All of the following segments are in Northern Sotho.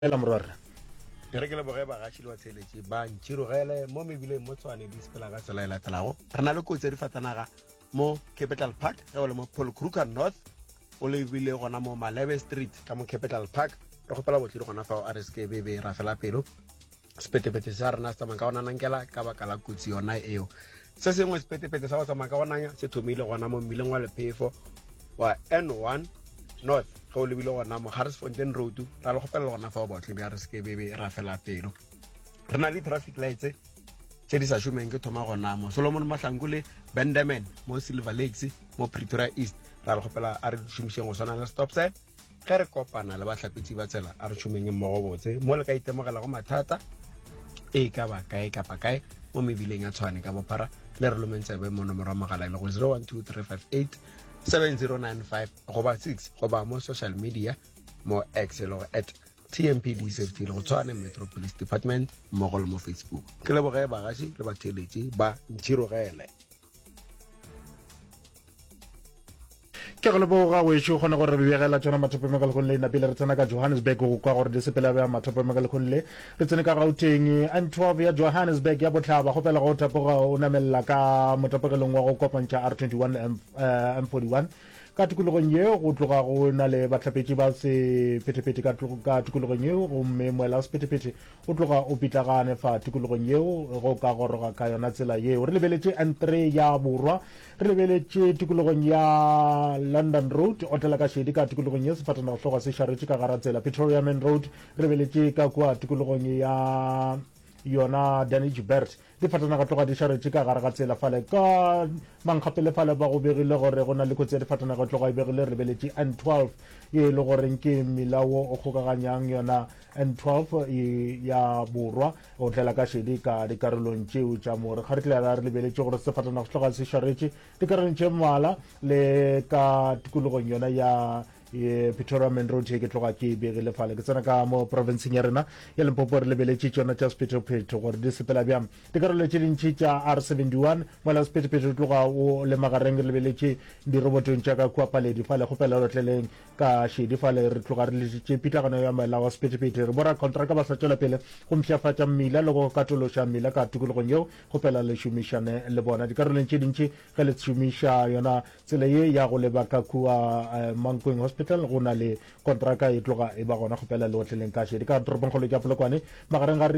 Dumela morwarra. Ke re ke leboge bagaši le batheeletši ba Ntšhirogele mo mebileng mo Tshwane di sepela ka tsela e latelago. Re na le kotsi ya difatanaga mo Capital Park ge o le mo Paul Kruger North o lebile gona mo Malebe Street ka mo Capital Park. Re kgopela botlhi le gona fao a re seke be be ra fela pelo. Sepetepete sa rena se tsamaya ka go nanankela ka baka la kotsi yona eo. Se sengwe sepetepete sa go tsamaya ka go nanya se thomile gona mo mmileng wa lephefo wa N1 north ge o lebile gona mo Harrisfontein road ra le kgopelela gona fa o baotle bja re seke bebe ra fela pelo re na le traffic lights tse di sa šomeng ke thoma gona mo solomon mahlanku le benderman mo silver lakes mo pretoria east ra le kgopela a re šomišeng go swana le stop sign ge re kopana le bahlapetši ba tsela a re tšhomeng mmogo botse mo le ka itemogelago mathata e ka ba kae kapa kae mo mebileng ya tshwane ka bophara le re lomeng tsebe mo nomoro ya mogala e le go 0123587095 goba 6 goba mo social media mo x e le go at tmpd safety le go tshwane metro police department mmogo le mo facebook ke leboge bagaši le batheeletši ba ntšhirogele ke go leboga go ešo kgone gore re begela tsona mathopo me ka lekgong le napile re tsena ka johannesburg go kwa gore di sepela bja mathopo me ka lekgong le re tsene ka gauteng n 12 ya johannesburg ya botlhaba go pela go tapoga o namelela ka motapogelong wa go kopantšha r 21 m 41 ka tikologong ye go tloga go na le bahlapetši ba sephethephethe ka tikologong ye gomme moela sephethephethe O tloga o pitlagane fa tikologong yeo ge o ka goroga ka yona tsela yeo. Re lebeletše N3 ya borwa, re lebeletše tikologong ya London Road, otlela ka šedi ka tikologong ye sefatanagohlogo se šaretše ka gara tsela, Pretoria Main Road, re lebeletše ka kua tikologong ya yona Danichbert. Difatanaga tloga di šaretše ka gare ga tsela fale ka mankgapele fale ba go begile gore go na le kotsi ya difatanaga tloga e begile rebeletše N12 ye e le goreng ke mmila wo o kgokaganyang yona N12 e ya borwa o tlela ka šedi ka dikarolong tšeo tša more ga re tle ra re lebeletše gore sefatanaga se tloga se šaretše dikarolong tše mmala le ka tikologong yona ya ye pretoria main road ye ke tloga ke e begile fale ke tsena ka mo provinceng ya rena ya limpopo re lebeletše tšona tša sephetopheto gore di sepela bjang dikarolo tše dintšhi tša r 71 mola sephetopheto tloga o le magareng re lebeletše dirobotong tša ka kua paledi fale go pela lotleleng ka šedi fale re tloga re letše pitlagano ya moela wa sephetopheto re bora contraka ba sa tšwela pele go mpšhafatša mmila le go katološa mmila ka tokologong yeo go pela le šomišane le bona dikarolong tše dintšhi ge le šomiša yona Tsela ye ya go leba ka kua Mankweng Hospital go na le kontraka e tloga e ba gona go pela leotleleng ka šedi ka toropongkgolo ya Polokwane magareng ga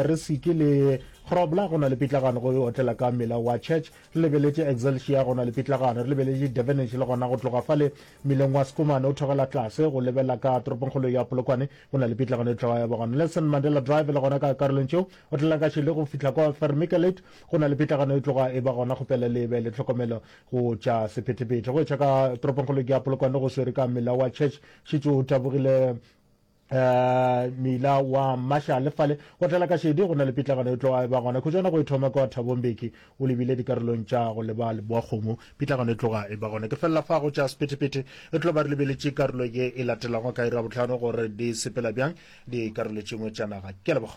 Risiki le Grobler go na le pitlagano go otlela ka mmila wa Church re lebeletše Excelsior go na le pitlagano re lebeletše Devenish le gona go tloga fale mmileng wa Schoeman o thogela tlase go lebela ka toropongkgolo ya Polokwane go na le pitlagano e tloga ya ba gona Nelson Mandela Drive le gona ka karolong tšeo otlela ka šedi go fihla kwa Vermiculate Go na le pitlagano e tloga e ba gona go pela le be le tlhokomelo go tša sephethephethe. Go etša ka toropongkgolo ke a Polokwane go swere ka mela wa Church, šetše o tabogile um mela wa Marshall le fale go tlela ka šedi. Go na le pitlagano e tloga e ba gona khutšwana go e thoma kwa Thabo Mbeki o lebile dikarolong tša go leba Leboakgomo. Pitlagano e tloga e ba gona ke felela fa go tša sephethephethe e tlo ba re lebeletše karolo ye e latelago ka iri ya bohlano gore di sepela bjang dikarolo tše dingwe tša naga. Ke a leboga.